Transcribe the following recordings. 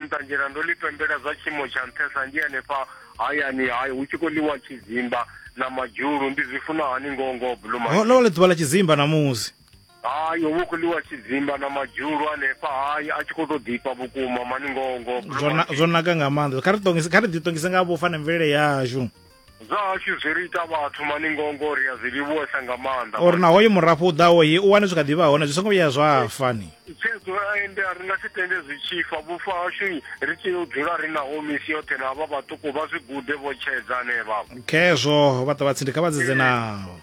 nṱanzhela ndo ḽi pembela zwa tshiimo tsha nṱhesa ndi hanefha hayani hayo hu tshi khou ḽiwa tshidzimba na madzhulu ndi zwi funa hani ngoho ngoho blue Ho- ḽo vha ḽi ḓuvha ḽa tshidzimba ṋamusi hayi hovha hu khou ḽiwa tshidzimba na madzhulu hanefha hayi a tshi khou to ḓifha vhukuma mani ngoho ngoho Blue zwo na- Monkey. zwo naka nga maanḓa kha ri ṱongise- kha ri ḓiṱongise nga vhufa na mvelele yashu Zwa hashu zwi ri ita vhathu maningo ngo ri a zwi livhuwesa nga maanḓa. Uri na hoyu murafho u ḓaho hi u wane zwi kha ḓi vha hone zwi songo vhuya zwa fa ni. Tshedzo ende a ri nga si tende zwi tshi fa vhufa hashu ri tea u dzula ri naho misi yoṱhe na havha vhaṱuku vha zwi gude vho tshedza hanevha. Khezwo vha ṱavha tsindi kha vha dzedze naho.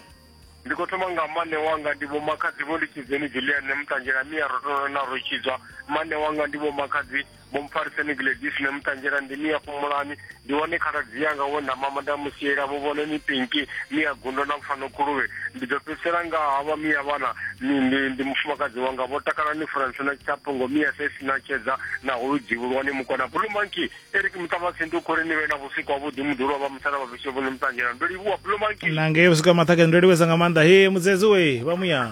Ndi khou thoma nga mane wanga ndi vho makhadzi vho ndi tshidzeni Julian Muṱanjela miya ro tou na ro tshidzwa mane wanga ndi vho makhadzi Vho Mphariseni Gladys na Muṱanzhela ndi ni ya fhumulani ndi wane khaladzi yanga we nda mama nda musiela vho vhone ni pinki ni ya gundo na pfano khuluvhe ndi ḓo fhedzisela nga havha miya vhana ni ndi ndi mufumakadzi wanga vho takala ni France na Tshaphungo miya sesi na tshedza na hulu dzivhulwani mukona Blue Monkey Eric Muṱavhatsi ndi khori ni vhe na vhusiku ha vhuḓi muḓulu vha musala vha fhishe vhone Muṱanzhela ndo livhuwa Blue Monkey na ngei vhusiku ha maṱhakeni ndo livhesa nga maanḓa he mudzedzi we vha muya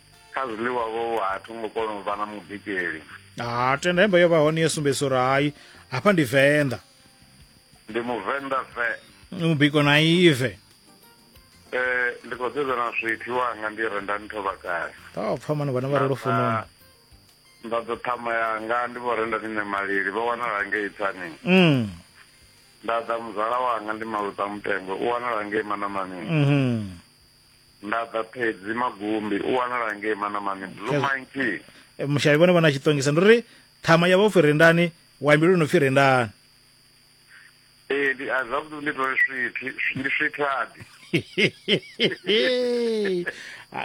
kha zwiḽiwa vho vha ha thungo kona u vha na mubikeli ha tenda hembe yo vha hone yo sumbedzisa uri hai hafha ndi venḓa ndi muvenḓa ve mubiko na ive eh ndi khou sedza na swithi wanga ndi renda ntho vhakale ta pfa mani vhana vha re lufunoni nda ḓo ṱhama yanga ndi vho renda nṋe malili vho wanala ngei tsani mm. nda ḓa muzala wanga ndi maluta mutengo u wanala ngei manamani mm -hmm. Nda ḓa phedzi magumbi u wanala ngei manamani blue monkey eh, mushayi vhone vhona tshitongisa ndi ri ṱhama ya vha upfi rendani waimbi lwo no pfi rendani ee ndi a zwavhuḓi ndi tole swithi ndi swithadi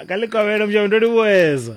ka likovhelo mushayi ndo livhuweza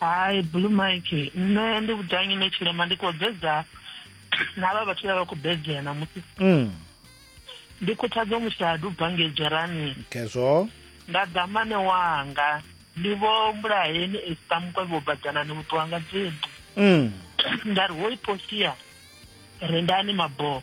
hai blue mike nṋe ndi vhudanyi ne tshilema ndi khou bedza na vha vhathu vha vha khou bedzea namusi mm. ndi khuthadzo mushadu u bvange dzherani khezwo nda ḓa mane wanga ndi vho mbulaheni esita mukwevhi wo badzana ni vhuṱuwanga dzimbi mm. nda ri hoi posia rendani maboo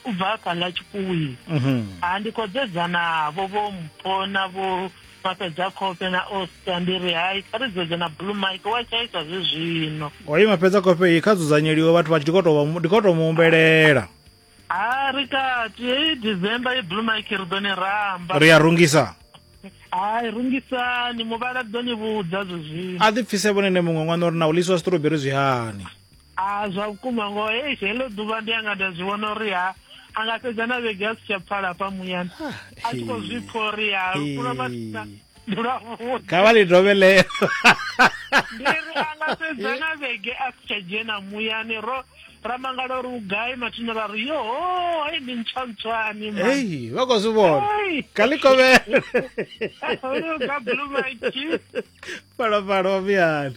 u bva kha ḽa tshikuwini mhm. ha ndi khou dzedzanavho vho mpona vho mapedza kope na osta ndi ri hai kha ri dzedze na blue mike wa tshaisa zwi zwino oyi mapedza kope iyi kha dzudzanyeliwe vhathu vha tshi ndi khou tou mu humbelela ha ri kati heyi december ye blue mike ri ḓo ni ramba ri a rungisa hai rungisani muvhala ḓo ni vhudza zwi zwino a ḓipfise vhone ne muṅwe ṅwana uri na u ḽiswa siṱuroberi zwi hani A zwa vhukuma ngoho eish heḽo ḓuvha ndi anga nda zwi vhona uri ha a nga fhedza na vhege a si tsha pfala hafha muyani a tshi khou zwi pfha uri ha lwa mathina ndi lwavhuḓi kha vha ḽi dovhe ḽeḽo ndi ri a nga fhedza na vhege a si tsha dzhena muyani ro ra mangala uri u gai mathina ra ri yo hei ndi ntswantswani ma ei vha khou zwi vhona kha ḽi kovhele uri u gabulumaki fhalofhalo wa muyani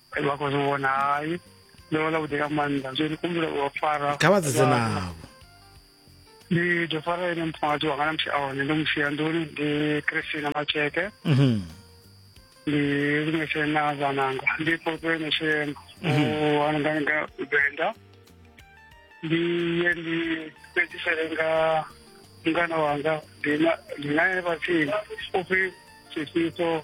vha khou zwi vhona hai ndo vha ḽa vhuḓi nga maanḓa zwo ndi kumbula u fara kha vha dzedze navho ndi ḓo fara ene mufumakadzi wanga na musi a hone ndo mu sia nḓuni ndi christina matsheke mhm. ndi lungese na vhananga ndi fhotwe neshema ananganga mhm. venda ndi ye ndi fhedzisele nga mngana wanga ndi naye vhatsini upfi tshifiso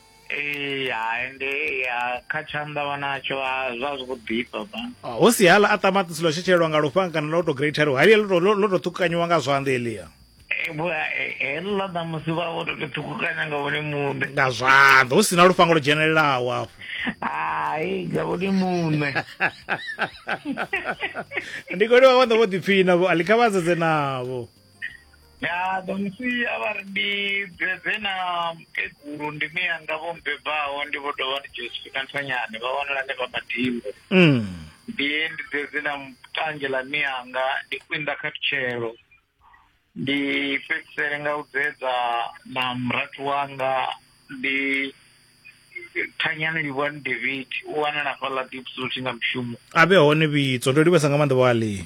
ee hai ndi kha tshanḓa vha natsho zwa zwi khou ḓifha ba ah, hu si hala a ṱamaṱisi ḽo tshetshelelwa nga lufhanga kana ḽo to greatheriwa halia ḽo to ṱhukukanyiwa nga zwanḓa elia heḽa na musi vha vho to to ṱhukukanya nga vhone muṋe nga zwanḓa hu si na lufhanga lwo dzhenelelaho afho hai nga vhone muṋe ndi koliwa vha ḓo vho ḓipfina vho alikhavhadzedze navho ya ḓo musi a vha ri ndi bebe na mukegulu ndi mi yanga vho mbebaho ndi vho dovha ndi josephina nthonyane vha wanala hanefha madimbo Mm. ndi ndi dzedzi na tanzhe ḽa mi yanga ndi kwinda kha thutshelo ndi fhedzisele nga u dzedza na murathu wanga ndi thanyani livhuwani david u wanala fhaḽa dipsuthi nga mushumo a vhe hone vhitso ndo livhesa nga maanḓa vhali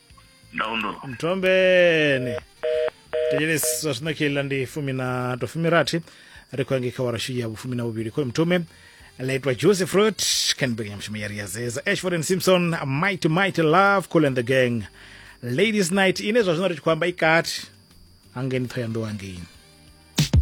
ndaundo mthombeni thetshelesi zwa zwino kheiḽa ndi fumi na to fumi rathi ri khou yange kha warashu ya vhufumi na vhuvhili khoyo mthume ḽa itwa joseph fruit canberg ya mushumo ya ri ya zeza ashford and simpson mighty mighty love cool and the gang ladies night ine zwa zwino ri tshi khou amba i kati hangeni thoyandou hangeni